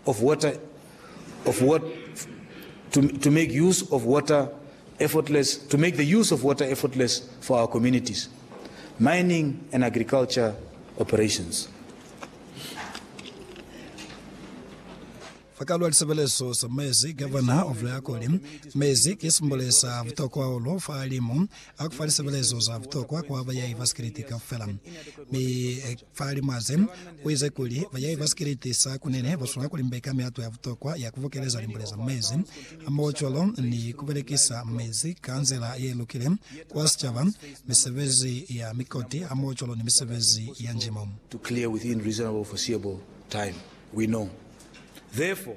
of water of what to, to make use of water effortless to make the use of water effortless for our communities mining and agriculture operations fakalwa lisebelezo sa mezi governor of leakoli mezi ke simbole sa vutokwa holo fa alimu akufa lisebelezo za vutokwa kwa bayai ba sikiliti kaufela mi Fa limo aze, uize kuli, Bayahi ba sikeleti sa kunene baswanela kulimbeka mihato ya butokwa ya kubokeleza limbule za mezi, hamohocwalo ni kubelekisa mezi ka nzila yelukile kwa sicaba, misebezi ya mikoti, hamohocwalo ni misebezi ya njimo. to clear within reasonable foreseeable time, we know therefore.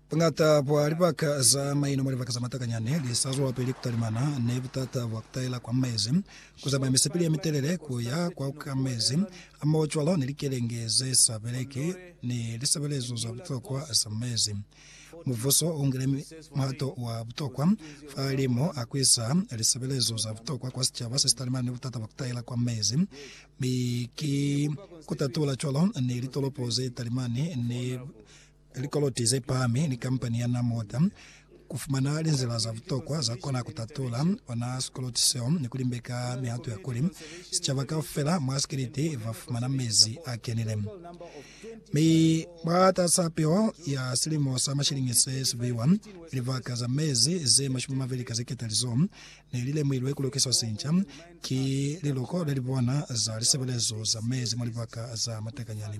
Buñata bwa libaka za maino mwa libaka za matakanyani li sa zwelapili ku talimana ni butata bwa ku taela kwa mezi, ku zamaya misipili ye mitelele ku ya kwa ku ka mezi, hamohocwalo ni likelenge ze sa beleki ni lisebelezo za butokwa za mezi. Mubuso u ngile muhato wa butokwa fa limo a ku isa lisebelezo za butokwa kwa sicaba se si talimana ni butata bwa ku taela kwa mezi, mi ki ku tatula cwalo ni litolopo ze talimani ni Likoloti ze pahami ni kampani ya Namortha ku fumana linzila za butokwa za kona ku tatula ona sikoloti seo ni ku limbeka mihato ya kuli sicaba kaufela mwa sikiliti ba fumana mezi a kenile. Mi mwatas'a peo ya silimo sa mashilingi se si buiwa, libaka za mezi ze mashumi mabeli ka zeketali zo ne li lemuilwe ku lokiswa sinca ki liloko le li bona za lisebelezo za mezi mwa libaka za matakanyani.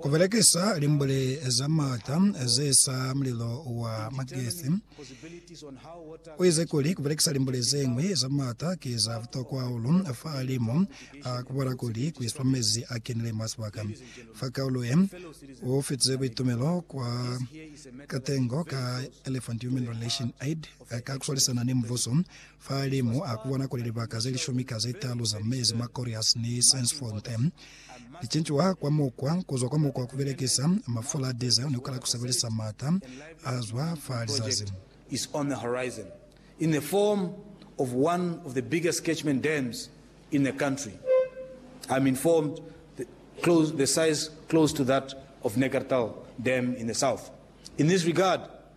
Ku belekisa limbuli za m'ata ze sa mulilo wa magesi, u ize kuli, Ku belekisa limbuli ze ñwi za m'ata ki za butokwa hahulu fahalimu a ku bola kuli ku iswa mezi a kenile mwa sibaka. Fa kaulo ye, u fitize buitumelo kwa katengo ka Elephant Human Relation Aid ka ku swalisana ni Mubuso Fa li mu a kubona kuli libaka ze lishumi ka ze talu za mezi mwa Correas ni Saints-Fontaine li cincuha kwa mukwa, ku zwa kwa mukwa wa ku belekisa mafula a diesel ni ku kala ku sebelisa m'ata a zwa fa lizazi. is on the horizon in the form of one of the biggest catchment dams in the country, I'm informed the size close to that of Neckartal dam in the south. In this regard,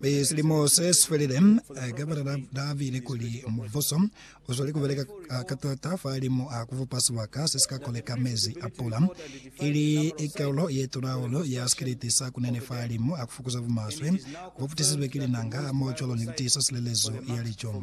Mi silimo se si felile, ka bulela Davidi kuli, Mubuso u zweli ku beleka ka taata fahalimu a ku bupa sibaka se si ka koleka mezi a pula, ili kaulo ye tulahulu ya sikiliti sa kunene fahalimu a ku fukuza bumaswe bo putisizwe ki linanga hamoho cwalo ni ku tiisa silelezo ya lico.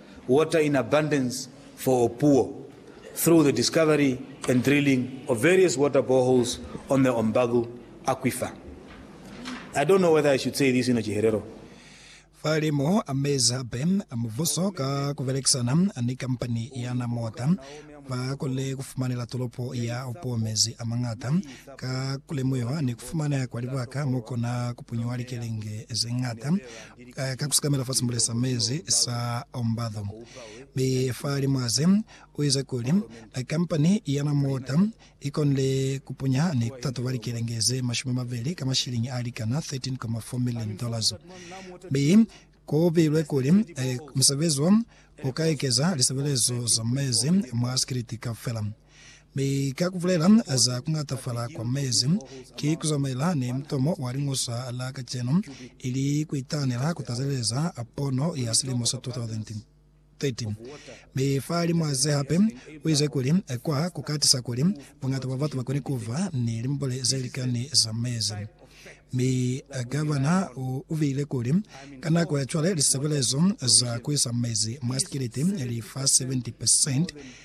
water in abundance for all poor through the discovery and drilling of various water boreholes on the Ombagu aquifer. I don't know whether I should say this in a Chiherero. Fa li mo amezi hape a mubuso ka ku belekisana ni kampani ya Namota, ba konile ku fumanela tolopo ya Opuwo mezi a mañata ka ku lemuiwa ni ku fumaneha kwa libaka mo kona ku punyuwa likelenge ze ñata. ka ku sikamela fa simbule sa mezi sa Ombadho, mi fa limwaze u ize kuli, Kampani ya na mota i konile ku punya ni ku tatoba likelenge ze mashumi mabeli ka mashilingi a likana 13.4 million dollars, mi ku bilwe kuli musebezi wo u ka ekeza lisebelezo za mezi mwa sikiliti kaufela. Mi ka kubulela za kungatafala kwa mezi, ki kuzamaela ni mutomo wa liñoswa la kacenu, ili kuitanela kutazeleza pono ya silimo sa 2030. Mi fa limo ze hape, uize kuli, Kwa kukatisa kuli bungata bwa batu bakone kuva ni limbule zelikani za mezi. Mi Gavana uviile kuli, Ka nako ya cwale, lisebelezo za kuisa mezi mwa sikiliti li fa 70 percent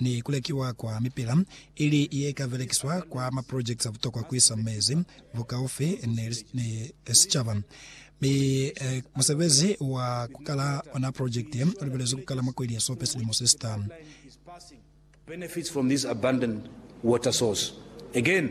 ni ku lekiwa kwa mipila ili ye ka belekiswa kwa ma projects a butokwa ku isa mezi bukaufi ni, ni sicaba. Mi eh, musebezi wa ku kala ona project ye u lebelezwi ku kala mwa kweli ya Sope silimo se sitanu. benefits from this abundant water source again.